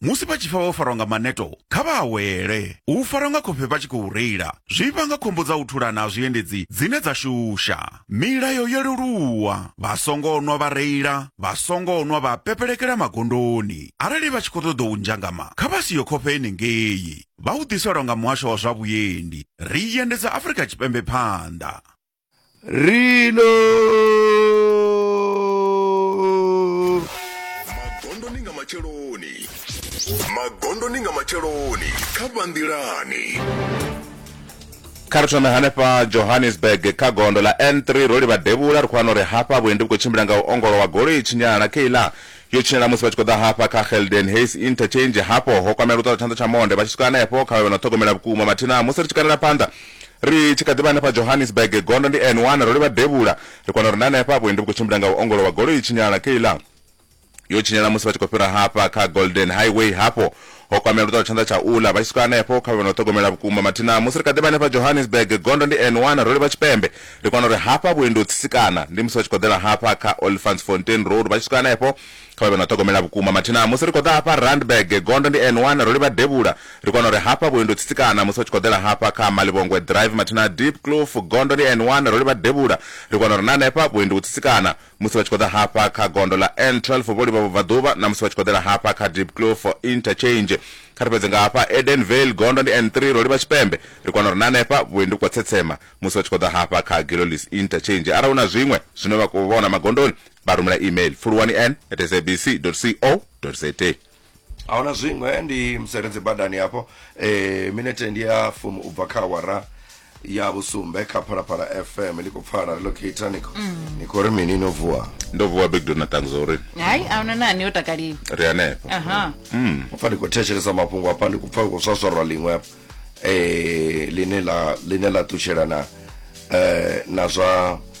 musi vha tshi pfa vho farwa nga maneto kha vha awele u farwa nga khofhe vha tshi khou reila zwi vhanga khombo dza u thulana ha zwiendedzi dzine dza shusha milayo yo leluwa vha songo nwa vha reila vha songo nwa vha pepelekela magondoni arali vha tshi khou ṱoḓa u nzhangama kha vha siyo khofhe enengei vha u ḓiselwa nga muhasho wa zwa vhuendi ri endedza afrika tshipembe phanḓa reload magondoni nga matsheloni magondoni nga matsheloni kha vhanḓilani kha ri thome hanefha johannesburg kha gondo ḽa n3 ro livha devhula ri khou wana uri hafha vhuendi vhu khou tshimbila nga u ongolowa goloi tshinyala na keiḽa Yo tshinyala musi vha tshi khou ḓa hafha kha Gelden Hayes Interchange. Hafho ho kwamela luṱaḓa tshanḓa tsha monde vha tshi swika henefho kha vha vhe na u ṱhogomela vhukuma. Mathina musi ri tshi kanela phanḓa ri tshi kha ḓi vha hanefha Johannesburg, gondo ndi N1, ro livha devhula. Ri kwana uri na henefha vhuendi vhu khou tshimbila nga u ongolowa, goloi i tshinyala. Kayla yo tshinyala musi vha tshi khou fhira hafha kha Golden Highway. Hafho Ho kwamea luṱaho tshanḓa tsha uḽa. Vha tshi swika hanefho, kha vhe na u ṱhogomela vhukuma. Mathina musi ri kha ḓi vha hanefha Johannesburg, gondo ndi N one, ro livha tshipembe. Ri kona uri hafha vhuendi ho tsitsikana. Ndi musi vha tshi khou ḓela hafha kha Olifantsfontein Road. Vha tshi swika hanefho, kha vha vhe na u ṱhogomela vhukuma. Mathina musi ri khou ḓa hafha Randburg, gondo ndi N one, ro livha devhula. Ri kona uri hafha vhuendi ho tsitsikana. Musi vha tshi khou ḓela hafha kha Malibongwe Drive, mathina Diepkloof, gondo ndi N one, ro livha devhula. Ri kona uri na hanefha vhuendi ho tsitsikana. musi vha tshi khou ḓa hafha kha gondo ḽa n12 for vholivha vhubvaḓuvha na musi vha tshi khou ḓela hafha kha dipclo for interchange kha ri fhedze nga hafha eden vale gondo ndi n3 ro livha tshipembe ri kwana uri na hanefha vhuendi vhu khou tsetsema musi vha tshi khou ḓa hafha kha gilolis interchange arali hu na zwiṅwe zwine vha khou vhona magondoni vha rumela email fuluwani n at sabc co za ahuna zwiṅwe ndi museredzi badani hafho eh, minete ndi ya fumi u bva kha awara ya vhusumbe kha phalaphala fm ḽi khou pfala ri locator ni khou- ni khou ri mini no vuwa ndo vuwa big dona ṱanguza uri hayi ahuna nani yo takaliwa ri hanefho aha pfa ndi khou thetshelesa mafhungo hafha ndi khou pfa hu khou swaswarwa ḽiṅwe hafha eh, ḽine ḽa ḽine ḽa ṱutshelana eh, na zwa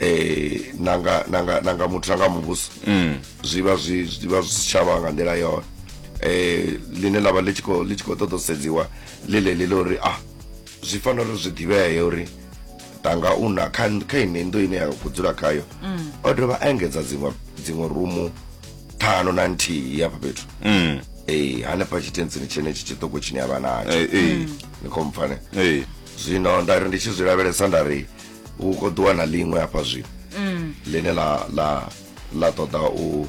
eh nanga nanga nanga muthu nanga muvhuso mm. zwivha zwi zwivha zwi sitshavha nga nḓila yone eh line lavha ḽi tshi khou ḽi tshi khou ṱoḓa u sedziwa ḽi ḽeḽi ḽa uri ah zwi fanela uri zwi ḓivhee uri tanga u na kha kha ine ndo ine ya khou dzula khayo mm. o dovha a engedza dziṅwe dziṅwe rumu ṱhanu na nthihi hafha fhethu mm. ee hanefha tshitentsini tshenetshi tshiṱoko tshine ya vha natsho eh, eh. mm. ni khou mpfane zwino nda ri ndi tshi zwi lavhelesa nda ri hu khou ḓiwa na ḽiṅwe hafha zwino mm. ḽine ḽa ḽa ḽa ṱoḓa u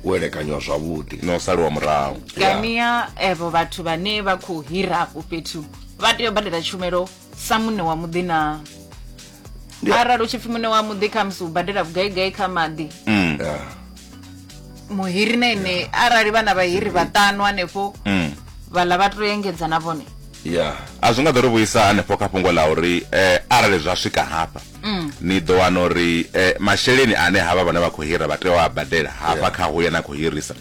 u elekanywa zwavhuḓi na u saliwa murahu kania evo vhathu vhane vha khou hira afho fhethu vha tea u badela tshumelo sa muṋe wa muḓi na arali u tshi pfi muṋe wa muḓi khamusi u badela vhugaigai kha maḓi mm. muhiri na ine arali vhana vhahiri vhaṱanu hanefho mm. vhala vha to engedza na vhone ya a zwi nga ḓo ri vhuisa hanefho kha fhungo ḽa uri um arali zwa swika hafha mm. ni ḓo wana uri um masheleni ane havha vhane vha khou hira vha tea u a badela hafha kha huya na khou hirisa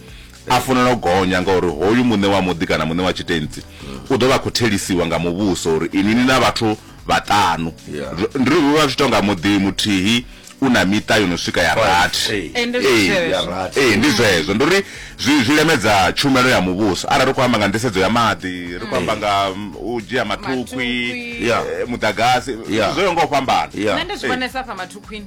a funela u gonya ngauri hoyu muṋe wa muḓi kana muṋe wa tshitentsi mm. u ḓo vha khou thelisiwa nga muvhuso uri inini na vhathu vhaṱanu Yeah. Ri- ndi ri vha zwi tou nga muḓi muthihi u na miṱa yo no swika ya rathi Ee. Eh, ndi Ee, zwezwo. ya rathi. ee ndi zwezwo ndi uri zwi zwi lemedza tshumelo ya muvhuso arali ri khou amba nga nḓisedzo ya maḓi ri khou amba nga mm, u dzhia mathukhwi Mathukhwi. Yeah. eh, muḓagasi Yeah. zwo yo nga u fhambana Yeah. nṋe ndi zwi Ee. vhonesa fha mathukhwini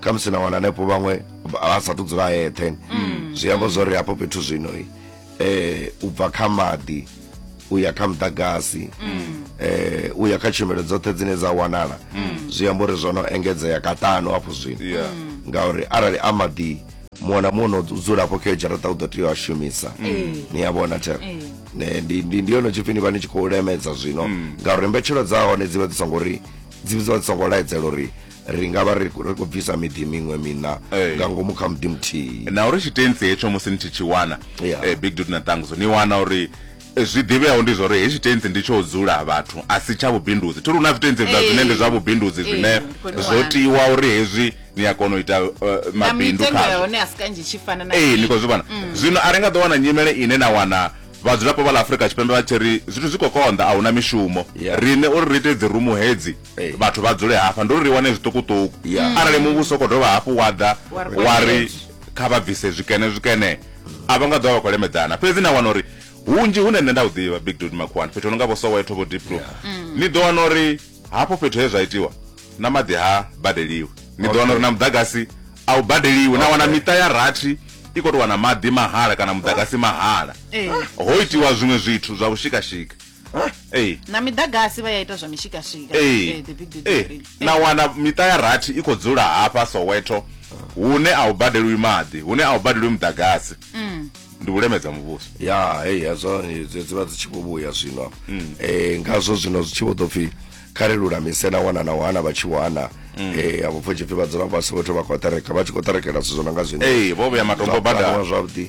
khamusi na wana hanefho vhaṅwe vha sathu dzula eṱhe mm. zwi amba zwori hafho fhethu zwino eh u bva kha maḓi u ya kha muḓagasi mm. eh u ya kha tshumelo dzoṱhe dzine dza wanala mm. zwi amba uri zwo no engedzea kaṱanu hafho zwino ngauri arali a maḓi muṅwe na muṅwe no dzula hafho kha dzharaṱa u ḓo tea u a shumisa ni a vhona thero ndi yono tshipfi ni vha ni tshi khou lemedza zwino ngauri mbetshelo dza hone dzi vha dzi songo ri dzi vha dzi songo laedzela uri ri nga vha ri khou bvisa miḓi miṅwe mina eh. nga ngomu kha muḓi muthihi na uri tshitensi hetsho musi ni tshi tshi wana eh, big dut na ṱanguso ni wana uri eh, zwi ḓivheaho ndi zwa uri hetshi tentsi ndi tsho dzula vhathu a si tsha vhubindudzi thi ri hu na zwitentsi vula zwine ndi zwa vhubindudzi zwine zwo tiwa uri hezwi ni a kona u ita mabindu khazwo ee ni khou zwi vhona mm. zwino a ri nga ḓo wana nyimele ine na wana vhadzulapo vha ḽa afurika tshipembe vha tshi ri zwithu zwi khou konḓa a huna mishumo rine uri ri ite dzi rumu hedzi Ee. vhathu vha dzule hafha ndi uri ri wane zwiṱukuṱuku Yeah. arali muvhuso u khou dovha hafhu wa ḓa Wa ri wa ri kwamela. kha vha bvise zwikene zwikene a vha nga ḓo vha khou lemedzana fhedzi na wana uri hunzhi hune nṋe nda hu ḓivha big dud makhuwani fhethu hu no nga vho soweto vho deep blue ni ḓo wana uri hafho fhethu he zwa itiwa na maḓi ha badeliwi ni ḓo wana uri na muḓagasi a u badeliwi na wana miṱa ya rathi i khou tou wana maḓi mahala kana muḓagasi mahala Eh. ho itiwa zwiṅwe zwithu zwa vhushikashika Huh? Hey. na miḓagasi vha ya ita zwa mishikashika hey. hey, the big hey. Eh, hey. na wana miṱa ya rathi i khou dzula hafha soweto hune a u badelwi maḓi hune a u badelwi muḓagasi mm. ndi u lemedza muvhuso ya hey, hezwo dzi vha dzi tshi khou vhuya zwino um mm. eh, ngazwo zwino zwi tshi vho ḓo pfhi kha ri lulamise na wana na wana vha tshi wana mm. eh abo pfo tshipfi vha dzula fhasi vhathu vha khou tereka vha tshi khou terekela zwithu zwo no nga zwine ee vho vhuya matombo badala zwavhuḓi